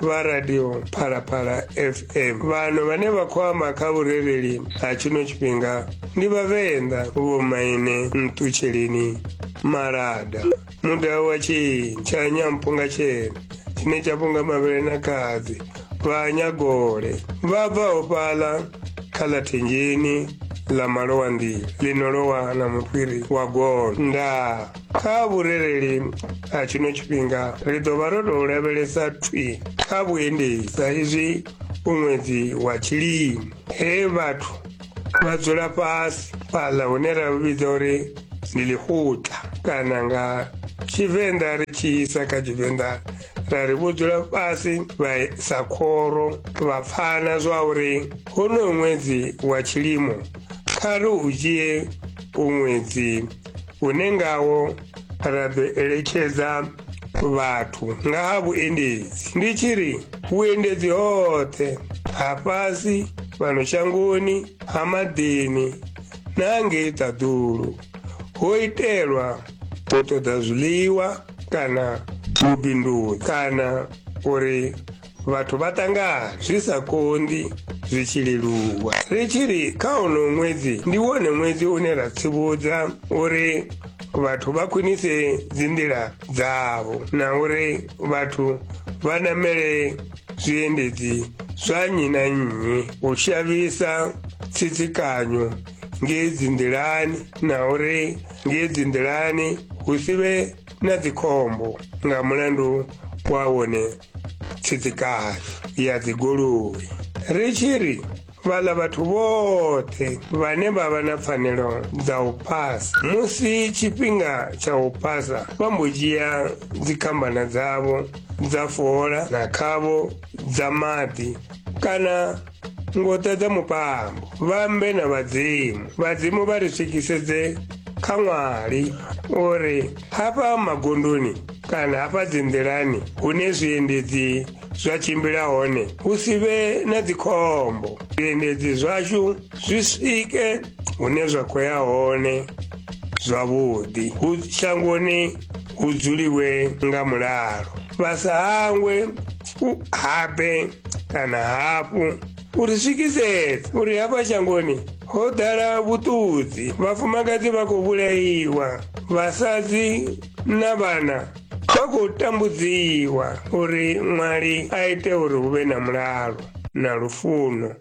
vha radio phalaphala fm vhano vhane vha khou amba kha vhurereli ha tshino tshifhinga ndi vhavenḓa vhomaine nṱutsheleni malada mudau wa tshintsha nyamphunga tshena tshine tsha vhunga mavhele na khadzi vha nyagole vha bvaho fhaḽa kha ḽa thenjeni ḽa malowa nḓila ḽino lowa na mufhiri wa golo ndaa Kha vhurereli ha tshino tshifhinga ri ḓo vha ro tou lavhelesa thwi kha vhuendedzi sa izwi u ṅwedzi wa tshilimo he vhathu vha dzula fhasi fhaḽa hune ra lu vhidza uri ndi ḽihuta kana nga tshivenḓa ri tshi isa kha tshivenḓa ra ri vho dzula fhasi vha sa khoro vha pfana zwa uri honoyo ṅwedzi wa tshilimo kha ri u dzhie u ṅwedzi une ngawo ra ḓo eletshedza vhathu nga ha vhuendedzi ndi tshi ri vhuendedzi hoṱhe ha fhasi fhano shangoni ha maḓini na hangei ṱaḓulu ho itelwa u ṱoḓa zwiḽiwa kana vhubindudzi kana uri vhathu vha ṱangana zwi sa konḓi zwi tshi leluwa ri tshi ri kha uno ṅwedzi ndi wone ṅwedzi une ra tsivhudza uri vhathu vha khwinise dzinḓila dzavho na uri vhathu vha namele zwiendedzi zwa nnyi na nnyi u shavhisa tsitsikanyo ngei dzinḓilani na uri ngei dzinḓilani hu si vhe na dzikhombo nga mulandu wa wone tsitsikano ya dzigoloi ri tshi ri vhala vhathu vhoṱhe vhane vha vha na pfanelo dza u phasa musi tshifhinga tsha u phasa vha mbo dzhia dzikhambana dzavho dza fola na khavho dza maḓi kana ngota dza mupango vhambe na vhadzimu vhadzimu vha ri swikisedze kha ṅwali uri hafha magondoni kana hafha dzinḓilani hune zwiendedzi zwa tshimbila hone hu si vhe na dzikhombo zwiendedzi zwashu zwi swike hune zwa khou ya hone zwavhuḓi hu shangoni hu dzuliwe nga mulalo vha sa hangwe u habe kana hafhu u ri swikisetse uri hafha shangoni ho ḓala vhuṱudzi vhafumakadzi vha khou vhulaiwa vhasadzi na vhana vha khou tambudziwa uri ṅwali a ite uri hu vhe na mulalo na lufuno